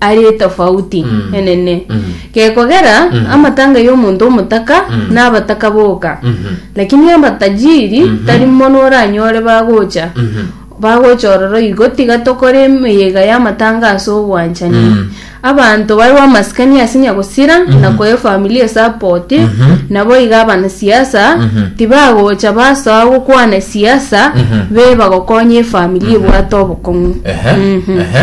are etofauti Mm. enene Mm. gekogera Mm. amatanga y'omonto omotaka Mm. nabataka boka Mhm. lakini amatajiri Mhm. tari mono oranyore bagocha Mhm. bagocha ororo igo tiga tokore emeyega y'amatanga ase obwanchani Mm. abanto bare bamasikani ase nyagosira na koe familia esapoti Mhm. nabo iga abanasiasa Mhm. tibagocha basoa gokwana esiasa Mhm. be bagokonya efamilia ebwate obokong'u Ehe, Mhm. ehe.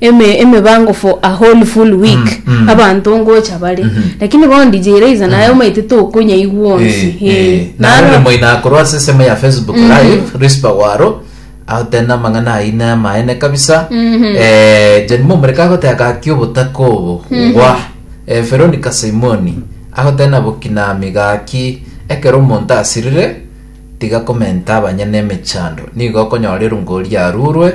eme emebango for a whole full week Mm, mm. abanto ngocha bare Mhm. lakini bono DJ Raiza naye omaite tokonyaigwa onsi Eh, eh, Eh, naro naro- remo inakorwa ase esemo ya facebook live rispa waro agotenda amang'ana aine amaene kabisa Eh, john momoreka agotega gaki obotaka obo gwa Eh, veronica simoni agotenda bokinami gaki ekero omonto asirire tiga komenta abanyene emechando nigo okonyorerwa ngori arurwe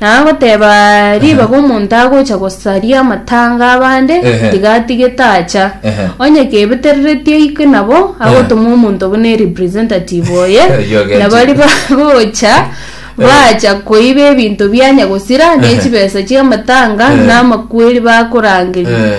Na agoteba ribaga omonto agocha gosaria amatanga abande, Ehe. tiga atige tacha. Ehe. Onye kebetereretie aike nabo, agotoma omonto buna erepresentative oye, Oyo na bari agenchete. bagocha bacha koiba ebinto bianya gosira, ne chibesa chi'amatanga, na amakweri bakorangeria. Eh.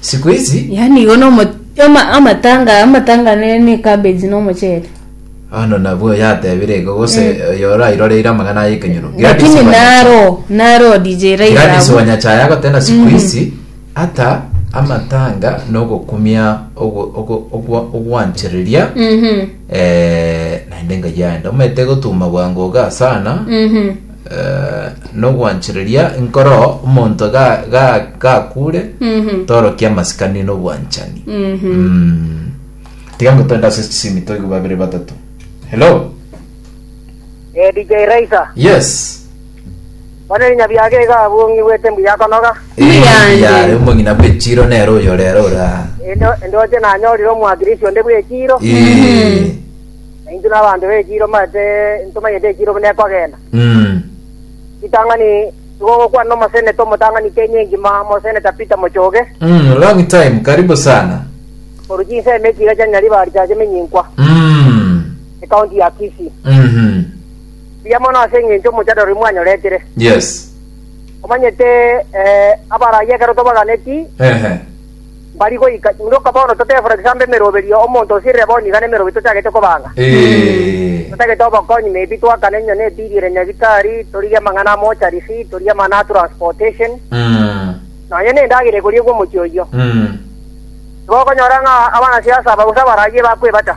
siku hizi yaani igo nomo ama- amatanga amatanga ne ne cabbage no mochele ano nabwo yatebire igo gose yora iroreire amagana aye kenyoro lakini naro naro DJ Gladys Raila Wanyachaya agotena siku hizi hata amatanga nogokumia ogo- ogo- ogwa- ogwanchereria mhm eh, naende engaji yaenda omanyete gotuma bwango iga sana mhm Eh, nogwanchereria nkoro omonto ga- ga- gakure Mhm. torokia amasikani nobwanchani Mhm. Mm. tiga ngotwenda ase chisimi toigwe babere batato hello Eh, DJ Raisa, yes bane nyabiaga iga abungi bwete mbuya konoga. Muyande. yare omong'ina bwechiro nero oyo rero ora Endo endoche nanyorire omwagirisi onde bwechiro. Eh, na intwe nabaanto b'ekiiro mbaete ntomanyete ekiiro buna ekwagenda. Mm. Ritang'ani tigogokwana omoseneta omotang'ani Kenya engima, Moseneta Peter Mochoge, Mm, long time, karibu sana. korwa chinsemo echiga chia Nyariba risacha emenyinkwa, Mm. ekaunti ya Kisii. Mhm. Mbuya mono ase eng'encho omochadaro oria mwanyoretire. Yes. Omanyete eh, abaraia ekero tobaganeti, Ehe. Bari goika chimuroka bono totefora egesaamba emeroberio, omonto osirire bono nigo nemeroberio tochagete kobanga. Totagete obokonyi maybe twakane enywa ne bill ere nyagitari, torigie amang'ana a mortuary fee, torigie amang'ana a transportation, nonye ne endagera ekoriegwa omochie oyio. Tibokonyora ng'a abana siasa aba gose abaragie bakwebata.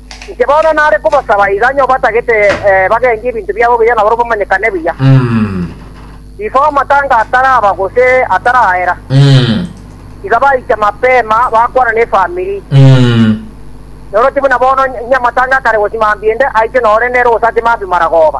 Inche bono nare kobosaba iga, onye obatagete bagengie ebinto biabo buya nabarabwo bamanyekane buya. Before amatanga ataraba gose ataraera, iga baicha mapema bakwana nefamiri. Noroche buna bono onye amatanga akare gosimambia ende, aiche nore nere gose ase mambia maragoba.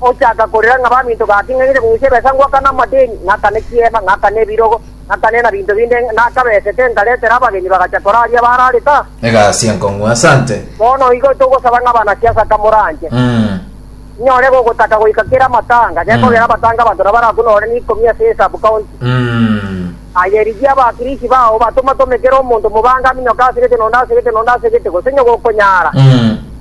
Ochaaka korera ng'a baminto gake ng'aigete kogucha ebesa ngwakane amadeni, ng'akane chiema, ng'akane ebirogo, ng'akane na binto binde, nakabesete nkaretera abageni bagacha koraaria abararete aa. Egasi enkong'u. Asante. Bono igo togosaba ng'a banasiasa kamoranche, inyore gogotaka goika kera amatanga, gekogera amatanga abanto nabo barakunore na ikomi ase esabu county. Aye rigia abakirisi bao batoma-tome kera omonto mobange aminyoke ase gete na onde ase gete na onde ase gete, gose onye gokonyara.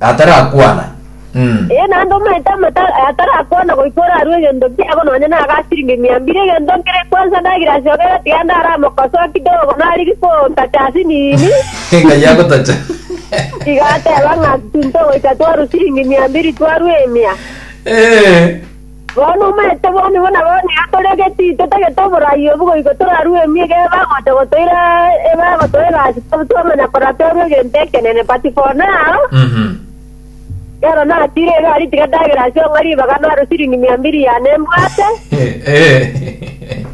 atarakwana. Mm. Ee, naende omonto amato atarakwana goika orarue egento kiabo nonya na aga asiringi mia mbiri, egento nkere kwansa ndagirasi ogere tiga ndaramokosoa kidogo nariri kotacha ase nini. Ng'a yagotacha. Tiga ateba ng'a tunto goika twarue siringi mia mbiri twarue emia. Eh. Bono omaete boni buna boni atorege titotagete oboraai obo goika torarue emiga ebe agocha gotoira ebe agotoa egasi tobe twamanya korora torue egento ekenene. But for now, kera natiire egari tiga ndagere ase ong'a ribaga naro siringi mia mbiri yane mbwate,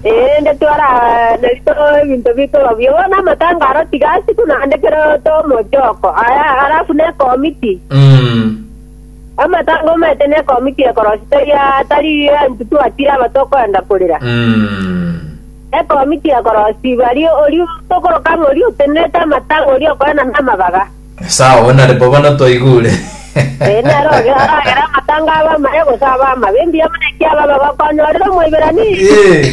erinde twarane toroe ebinto bitoba buya. Bono amatanga aro tiga asiko naende kera oto omochoko, aya, alafu ne ekomiti. Amatango amaete na ekomiti ekorosia tari atari anchutu atire abato okoenda korera. Ekomiti ekorosia ibari oria tokoroka ng'a oria otenerete amatango oria okorana namabaga. Sawa, bono nare bo bono twaigure. Ee, naro oge aragere amatango abe amaya gose abe amabe, mbuya buna ekiaba abaga okonyorera Omoiberania. Ee.